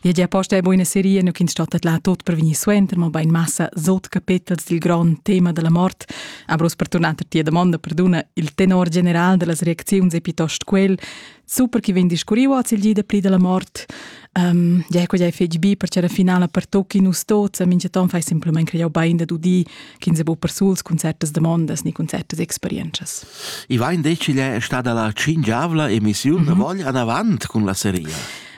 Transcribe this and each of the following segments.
Viagiar posta è buina seria, nu ch'ins stattet là tot per vegnir suenter, mobein massa sot capetels dil grond tema della mort. Aber per tornar a tia domanda, perduna, il tenor general dellas reacziuns è piuttosto quel, super chi vegn discurriu oz il gi da pli della mort. Um, ja, quella è fetg bi, perché la finala per tocchi nus tots, a minchaton fai semplament creau bein da dudi, ch'ins è bu per suls concertas domandas ni concertas experienzas. I va in deciglia è stada la cingiavla emissiun mm -hmm. da vogl anavant cun la seria.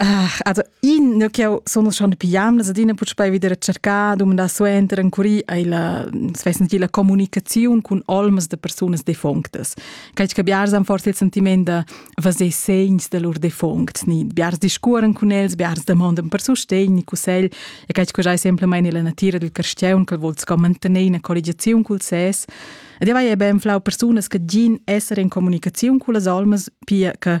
Ah, also ich nicht auch sono schon piam, dass ich putz bei wieder cercare, dumandar suenter ancora la, svess nicht, la comunicazione con olmas de personas defunctas. Cai che biars han forse il sentiment de vaser segns de lur defunct, ni biars discuoren con els, biars demandan per sostegno, consegl, e cai che già sempre mai nella natura del cristiano che vuol mantenere una collegazione col ses. Ed io vai ben flau personas che gin essere in comunicazione con le olmas, pia che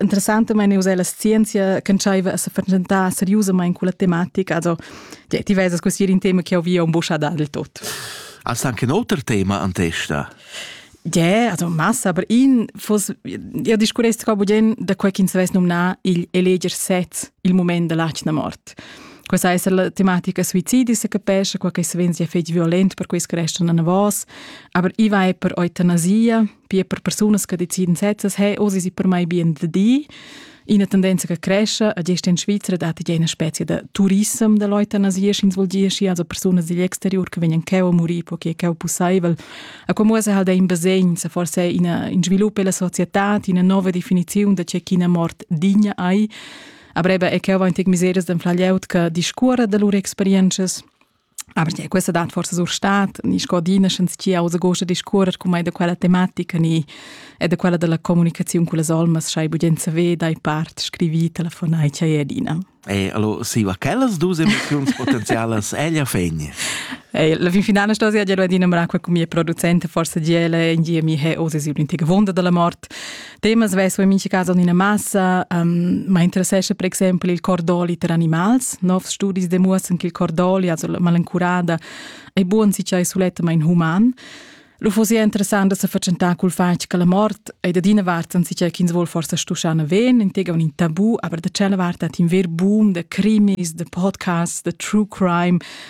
interessantamain uss è la scienzia ch'entschaiva a sa fatschentar seriusamain culla tematica. Also, ti vesas così in tema che ho via un bucha dal tot. Hast anche ein auter Thema an testa? Yeah, also massa, aber in fos io discurrest qua bugen da quel ch'ins vess nomnar il eleger sez il moment della latna mort. Questa è la tematica suicidi se capesce, quel che svenzi è fetg violent per questi restano a vos, aber i va per eutanasia, be per persunas che deciden sezzas hey, oh, sie sind per mai bien da die. Eine Tendenz che cresce, e gest in Svizzera date je eine Spezie de Tourism de Leute an Asies ins volgiesci, also Personen digl exterior che vegnan cheu a muri, poiché cheu pussaivel. E como se halt in basegn, se forse in, in sviluppo della società, in una nuova definizione de c'è chi una mort digna hai. Aber eben, ich habe auch miseres den Flagliaut, che discurre de loro experiences, Aber ja, questa dat forse sur stat, ni scodina schens chi ausa gosta discuorer cum ei da quella tematica ni e da quella della comunicazione con les olmas schai bugenza ve dai part scrivi telefonai chai edina. E allora si va quellas dus emozioni potenzialas ella fegni. E la fin finale sto sia già adina mra qua con mia producente forse giele in gia mi he osi si un'intiga vonda della morte Temas vesu in mincha cas en ina massa, um, ma interessescha per exempel il cordoli per animals. Novs studis demuossan che il cordoli, also la malencurada, è buon si c'è sulettamain human. Lo fosse interessant da se facentà col fatg che la mort è da dina vart an si c'è ch'ins vuol forse stuschana ven, in tega un tabù, aber da cella vart at in ver boom de crimis, de podcasts, de true crime,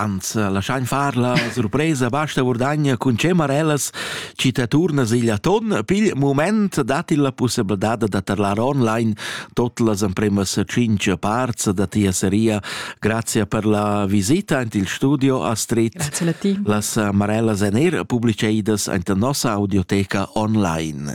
Ans laschain far la surpresa basta Vurdagna cun Cemarellas chi ta turna sigl aton pil mument dat il la pussebladad da tarlar online tot las empremas 5 parts da tia seria grazie per la visita ant il studio a Street grazie a ti las Marellas en er publiceidas ant nossa audioteca online